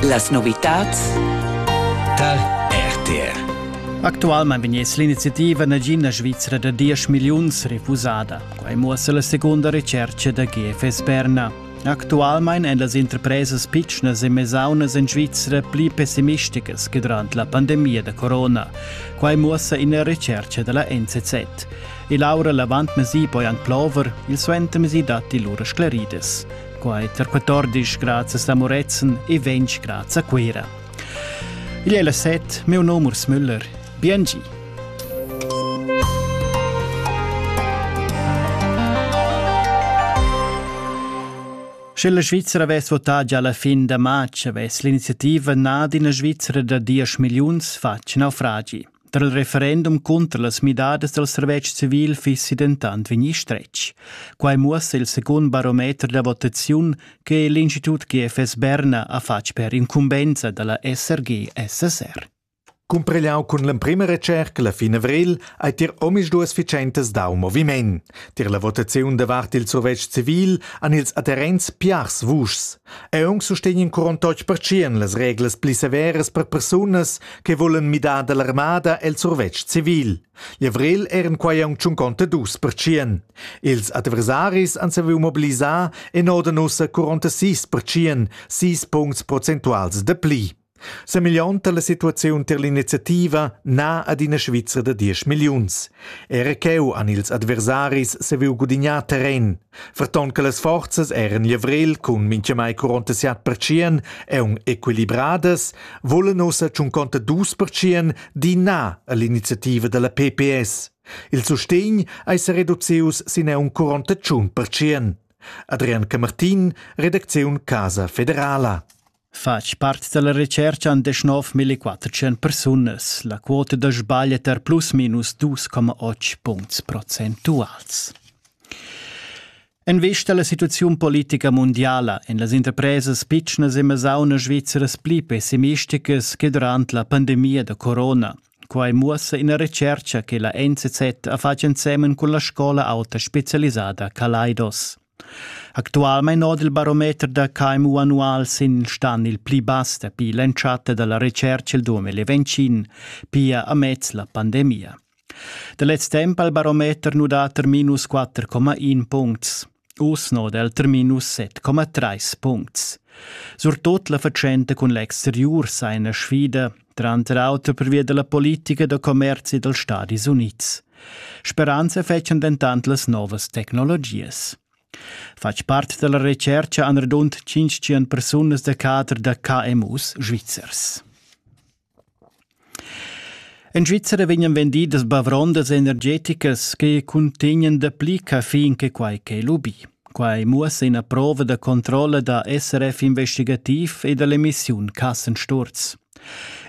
Las novitads tar RTR. Actualmain vegniss l'iniziativa nagin da Svizra da 10 milliuns refusada. Quai muossa la segunda recerca da GFS Berna. Actualmain èn las interpresas pitschnas e mesaunas en Svizra pli pessimisticas che durant la pandemia da corona. Quai muossa ina recerca da la NZZ. E Laura Lavant-Mesi poi anc plover, il suentermesi datti lura sclaridas. quai tar 14 grazias a Moretzen e 20 grazie a Cuira. Igl è la set, meu nom Urs Müller. Biengi! Sche la Svizzera avess votà già la fin da matg, avess l'iniziativa nà d'ina Svizzera da 10 milliuns fatg naufragi. Tra il referendum cunter las midadas dal servetsch civil fissi dentant vegnì stretg. Quai muossa il secund barometer da votaziun che l'Institut GFS Berna ha fatg per incumbensa da la SRG-SSR. Cumprigliau cun l'emprima recerca la fin avril ei tier omisduas fitschentas dau moviment. Tier la votaziun davart il survetsch civil han ils adherents piars vuschs. Aunc sustegn in curon totg pertschien las reglas pli severas per persunas che volen midar dall'armada el survetsch civil. L'Avril eran quai aunc tschunconta dus pertschien. Ils adversaris han saviu mobilisar en oden ussa 46 pertschien, sis puncts prozentuals de pli. Semillonta la situaziun ter l'iniziativa na ad ina Svizra da 10 milliuns. Era cheu han ils adversaris saviu gudignar terren. Ferton che las forzas eran glivrel cun mintgamai 47 pertschien aunc equilibradas, vulan ussa tschunconta dus pertschien di na all'iniziativa dalla PPS. Il sustegn ei sereducius sin aunc 48 pertschien. Adrian Camartin, redacziun Casa Federala. Fatg part dalla retscherca han deschnov millequattertschient persunas. La quota da sbagl è tar plus minus 2,8 puncts procentuals. En vista alla situazione politica mondiale en las interpresas pitschnas e mesaunas svizzeras pli pessimisticas che durant la pandemia da corona. Quai muossa ina retscherca che la NZZ ha fatg ensemen con la scola auta specialisada Kaleidos. Actualmein oda il barometer da KMU annual sin il stan il pli bass dapi l'entschatta dalla retscherca il 2025, pia amez la pandemia. Da lez temp ha il barometer nu dat er minus 4,1 puncts. Uss noda el ter minus 7,3 puncts. Surtut la fatschenta cun l'exteriur sa ina sfida, tranter auter pervia dalla politica da commerzi dals Stadis Unids. Speranza fetschan dentant las novas tecnologias. Fatg part dalla recerca han radund 500 persunas da cadre da KMUs svizzers. En Svizzera vegnan vendidas bavrondas energeticas che cuntegnan dapli caffein che quai che lubì. Quai muossa ina prova da controlla da SRF investigativ e da l'emissiun Kassensturz.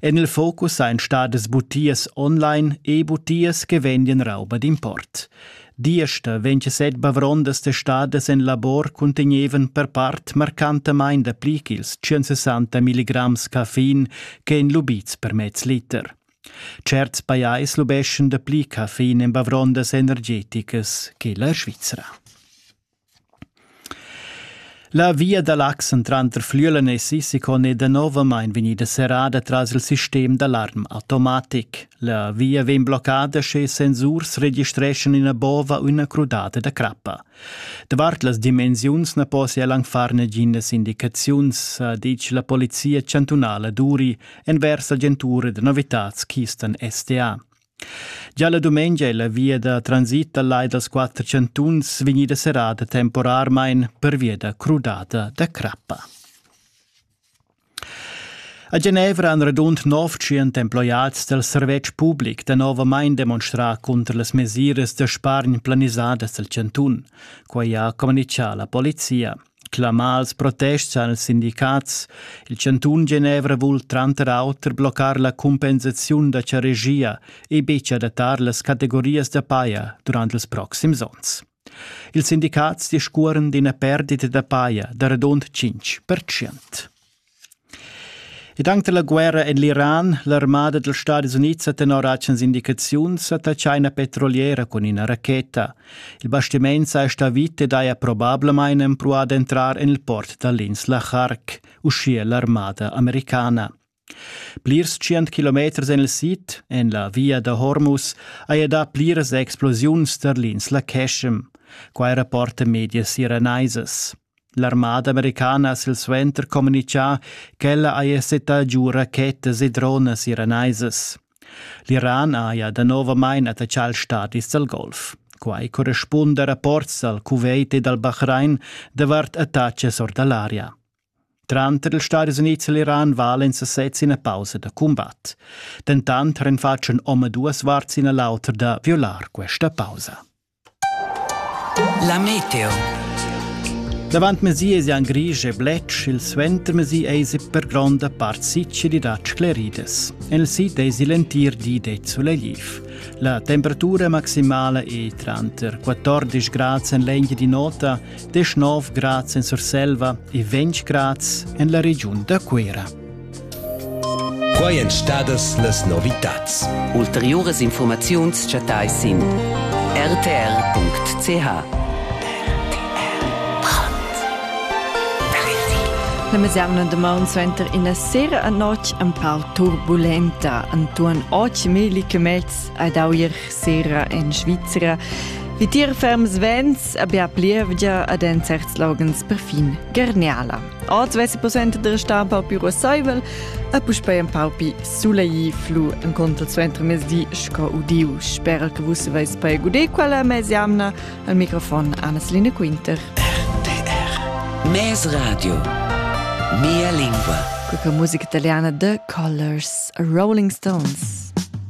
En il focus ein stadas butias online e butias che vendian rauba d'import. Diesta 27 bavrondas testadas en labor cuntegnevan per part marcantamain dapli ch'ils 160 milligrams caffein ch'ein lubids per mez liter. Certs pajais lubeschan dapli caffein en bavrondas energeticas che la Svizra. La via da l'Axen tranter Flülenessi Sicone e Danovamain vegnida serrada tras il sistem d'alarm automatic. La via vegn bloccada sche sensurs registreschan ina bova u ina crudada da crappa. Davart las dimensiuns na possia anc far naginas indicaziuns, ha ditg la polizia chantunala Duri envers agentura da novitads Kistan STA. Già la dumengia è la via da transit dal lai dals quatter chantuns vegnida serrada temporarmain pervia da crudada da crappa. A Genevra han radund 900 emploiads dal servetsch public danovamain demonstrà cunter las mesiras da spargn planisadas dal chantun. Quai ha communitgà la polizia. Clamà als protests han ils sindicats. Il chantun Genevra vul tranter auter bloccar la cumpensaziun da charegia e betg adattar las categorias da paja durant ils proxims onns. Ils sindicats discuoran d'ina perdita da paja da radund 5%. Ed anc da la guerra en l'Iran, l'armada dals Stadis Unids ha tenor atgnas indicaziuns attaccà ina petroliera cun ina racheta. Il bastiment saja stà vit ed haja probablamain empruà d'entrar en il port da l'insla Khark, uschia l'armada americana. Plirs tschient kilometers en il sid, en la via da Hormuz, haja dà pliras explosiuns tar l'insla Keshem. Quai rapporta medias iranaisas. L'armada americana ha silsuenter communitgà ch'ella haja settà giu rachetas e dronas iranaisas. L'Iran haja danovamain attaccà ils stadis dal Golf. Quai correspunda a rapports dal Kuwait e dal Bahrain davart attacas or da l'aria. Tranter ils Stadis Unids e l'Iran valen sesez ina pausa da cumbat. Dentant renfatschan omaduas varts ina l'autra da violar questa pausa. La meteo. Davantmezì esian grisch e bletsch, il suentermezì eisi per gronda part sicilidat scleridas. En il sid eisi l'entir di det sulegliv. La temperatura maximala è tranter 14 grad en l'eglia di nota, 19 grad en Surselva e 20 grad en la regiun da Cuera. Quai èn stadas las novitads. Ulteriuras infurmaziuns chattais sin rtr.ch. La mezz'amna damaun suenter ina sera a notg empau turbulenta Antoine Och Meli Kemets ad Auer sera en Svizra. Vitier ferms vents, abbia plievgia ad en certs loghens perfin gerniala. Oz vessi possibile de restar pau più rossaivel e puspei un pau più sulei flu en contro zu entremezdi sco udiu. Spero che vus veis poi gudé quella mesiamna al microfon Anna-Celine Quinter. RTR Mes Radio Mia lingua Quella musica italiana The Colors, Rolling Stones.